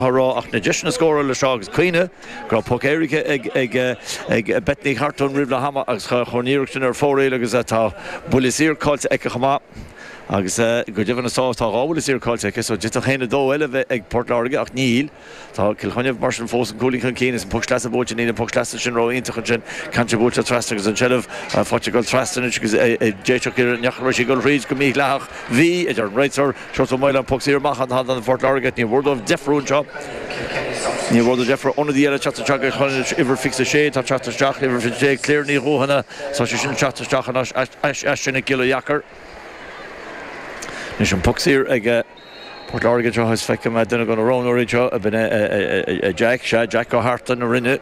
ach na deiseanna scórála sa agus cuimhnigh go raibh poc éirice ag Beth Ní Chartúin roimh leath ama agus chuir an iarracht sin ar fóraoil agus tá buille saor caillte aici chomh maith agus go deimhin na sá tá dhá bhuille saor caillte aici so d'fhéadfadh dhá chúilín eile a bheith ag Port Láirge ach níl. Tá Cill Chainnigh mar sin fós aon chúilín chun cinn is an poc sleasa buailte níl an poc sleasa sin ró iontach ansin ceann sin buailte trasna agus an tseilbh faighte ag dul trasna anois agus d'fhéadfadh iarraidh neacha raibh sí ag dul thríd go mídhleathach, bhí a deir an réiteoir Seo an poc saor amach do Phort Láirge Ní foláir dóibh deifriú anseo. Ní foláir dóibh deifriú ionadaí eile teacht isteach ag Chonaill, uimhir 26, atá ag teacht isteach, uimhir 20 ag Cléire Ní Dhuicheana, tá sé sin ag teacht isteach anois, ais as sin ag Giolla Dheacair. Anois an poc saor ag Port Láirge anseo, is feicim duine de na roghnóirí anseo ab ea Jack, sea, Jack Ó Fathaigh na Rinne.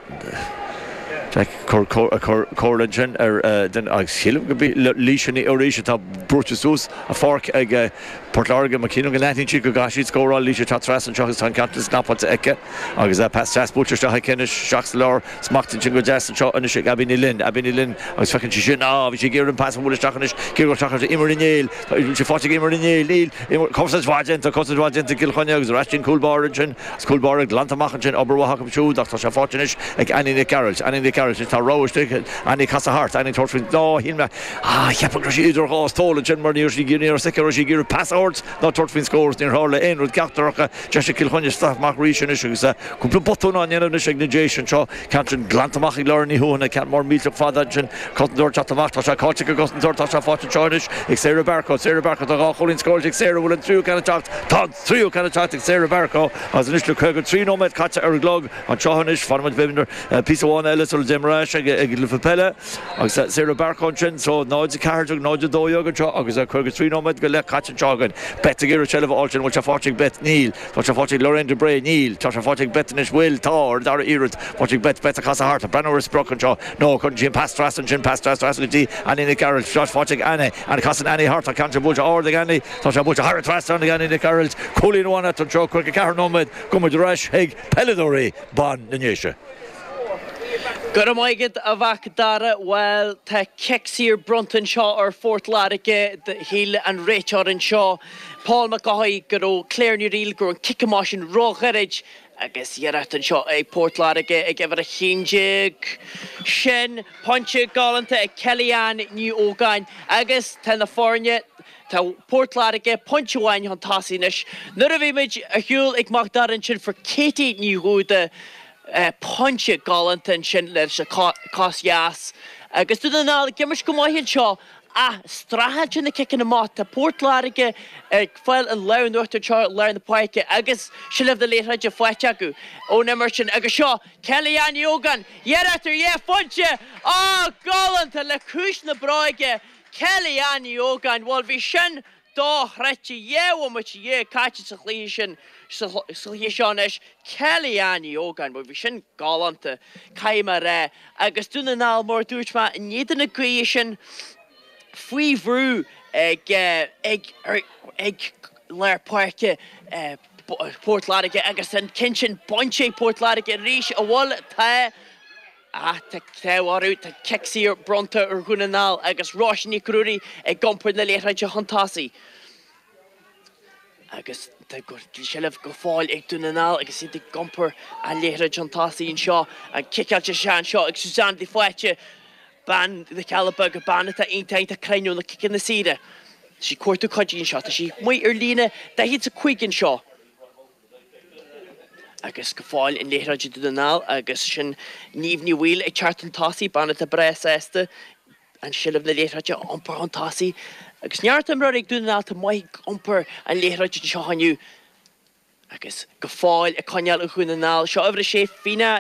Jack ag cur comhairle ansin ar duine agus shílim gurb í Laoise Ní Fhiorís atá brúite suas. a pháirc ag Port Láirge. Mar is cinnte go n-aithníonn siad go gcaithfidh siad scóráil. Laois atá trasna anseo agus tá an ceann sin snapáilte aici agus pas deas buailte isteach aici anois. Isteach sa lár. Smachtaithe ansin go deas anseo anois ag Abbie Ní Fhloinn. Abbie Ní Fhloinn agus feiceann sí é sin. Á, bhí sí ag iarraidh an pas a bhualadh isteach anois. Ciorrú isteach ar Eimear Ní Néill. Tá sé faighte ag Eimear Ní Néill. Níl. Eimear, cosaint mhaith déanta. Cosaint mhaith déanta ag Cill Chainnigh agus ar ais don chúl báire ansin. Agus cúl báire glanta amach ansin. Obair mhaith acu siúd ach tá sé faighte anois ag Annie Nic Gearailt. Annie Nic Gearailt. Anois tá rogha istigh. Annie, casadh thart. Annie ag tabhairt faoin dá shín. Ah, cheapfá go raibh sí idir dhá stól ansin mar ní raibh sí ag iarraidh, ní raibh sí ag, ní raibh sí ag iarraidh pas a thabhairt ná tabhairt faoin scór agus níor tharla aon rud ceachtar acu. Deis ag Cill Chainnigh scaitheamh arís anois agus cúpla botún á ndéanamh anois ag na Déise anseo. Ceann sin glanta amach ag Lauren Ní Thuathaina, ceann mór millteach fada ansin, cosantóir ag teacht amach, tá sé caillte ag an gcosantóir, tá sé faighte anseo anois ag Sarah Barcoe, Sarah Barcoe, tá dhá chúilín scóráilte ag Sarah, bhfuil an tríú ceann ag teacht? Tá an Tríú ceann ag teacht ag Sarah Barcoe agus anois le 53 nóiméad caite ar an gclog anseo anois, fanfaimid, beimid ar phíosa amháin eile sula dtéimid ar ais ag an bpeil agus Sarah Barcoe ansin. So 0:14, 0:12 anseo agus 53 nóiméad go leith caite anseo againn. Beth ag iarraidh seilbh a fháil sin, bhfuil sé faighte ag Beth? Níl. Tá sé faighte ag Lorraine de Bré? Níl. Tá sé faighte ag Beth anois, bhfuil? Tá, ar an dara iarraidh, faighte ag Beth, Beth ag casadh thart, breathnú ar an sprioc anseo, no, cuireann sí an pas trasna ansin, pas trasna go dtí Annie Nic Gearailt, faighte ag Annie, Annie, casann Annie thart, tá ceann sin buailte ard ag Annie, Tá sé buailte thar an trasnán ag Annie Nic Gearailt, cúilín amháin eatarthu anseo 54 nóiméad gabhfaidh muid ar ais chuig peileadóirí ban na nDéise. Go raibh maith agat a Mhac Dara. Bhuel, tá cic saor bronnta anseo ar Phort Láirge. Shíl an réiteoir anseo, Paul Mac Eochaidh, go raibh Claire Ní Fhríl, go raibh an cic amach sin ró-ghairid agus iarracht anseo ag Port Láirge ag uimhir 11. Sin pointe galánta ag Kelly-Ann Ní Ógáin agus tá na foirne. Tá Port Láirge pointe amháin chun tosaigh anois. Nuair a bhí muid ar shiúl ag Mac Dara ansin fuair Katie Ní Dhúda pointe galánta ansin leis an chos dheas agus Dún na nGall ag imirt go maith anseo ach streachailt leis na ciceanna amach. Tá Port Láirge ag fáil an lámh in uachtar anseo i lár na páirce agus seilbh na liathróide faighte acu ón imirt sin agus seo Kelly Ann Ní Ógáin ag iarraidh ar dhá phointe. Á galánta le cúis na bráige. Kelly, Ann Ní Ógáin, Bhuel bhí sin dochreidte, dhá bhomaite dhéag caite sa, sa chluiche seo anois. Kelly, Ann Ní Ógáin, Bhuel bhí sin galánta, caithfidh mé a rá. Agus Dún na nGall, mar a dúirt mé, in éadan na gaoithe sin, faoi bhrú ag, ag, ag lár páirce Phort Láirge agus an ceann sin bainte ag Port Láirge arís, an bhfuil, tá. Ach tá an t-ádh orthu, tá cic saor bronnta ar Dhún na nGall agus Róise Nic Ruairí ag iompar na liathróide chun tosaigh. Agus tá seilbh go fóill ag Dún na nGall agus iad ag iompar an liathróid chun tosaigh anseo. Á ciceáil isteach anseo ag Suzanne de Faoite, bean na gCealla Beaga, bean atá iontach, iontach cruinn leis na ciceanna saora. Tá sí ag cuartú cuidiú anseo. Tá sí amuigh ar líne, 45 anseo. Agus go fóill an liathróid ag Dún na nGall agus sin Niamh Ní Bhaoill ag teacht chun tosaigh, bean atá breá sásta seilbh na liathróide a iompar chun tosaigh. Agus neart imreoirí ag Dún na nGall, atá maith ag iompar an liathróid anseo inniu agus go fóill á coinneáil ag Dún na nGall. Seo uimhir a sé, Fíona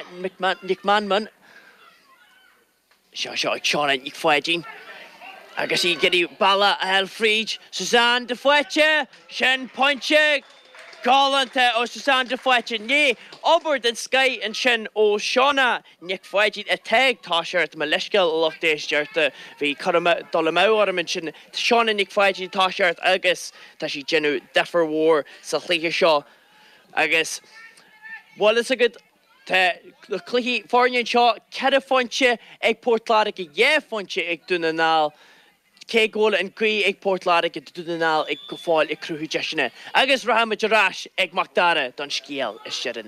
Nic Mheanman. Seo seo ag Seána Nic Pháidín agus í ag iarraidh bealach a fháil fríd Suzanne de Faoite! Sin pointe galánta ó Suzanne de Faoite. Rinne obair den scoith ansin ó Sheána Nic Pháidín atá ag tosacht, mo leithscéal a lucht éisteachta, bhí cur amú, dul amú orm ansin. Seána Nic Pháidín atá ag tosacht agus tá sí ag déanamh difear mór sa chluiche seo agus bhfuil fhios agat, Tá an cluiche cothrom anseo, ceithre phointe ag Port Láirge, dhá phointe ag Dún na nGall, cé go bhfuil an ghaoth ag Port Láirge tá Dún na nGall go fóill ag cruthú deiseanna agus rachaimid ar ais ag Macdara don scéal is deireanaí.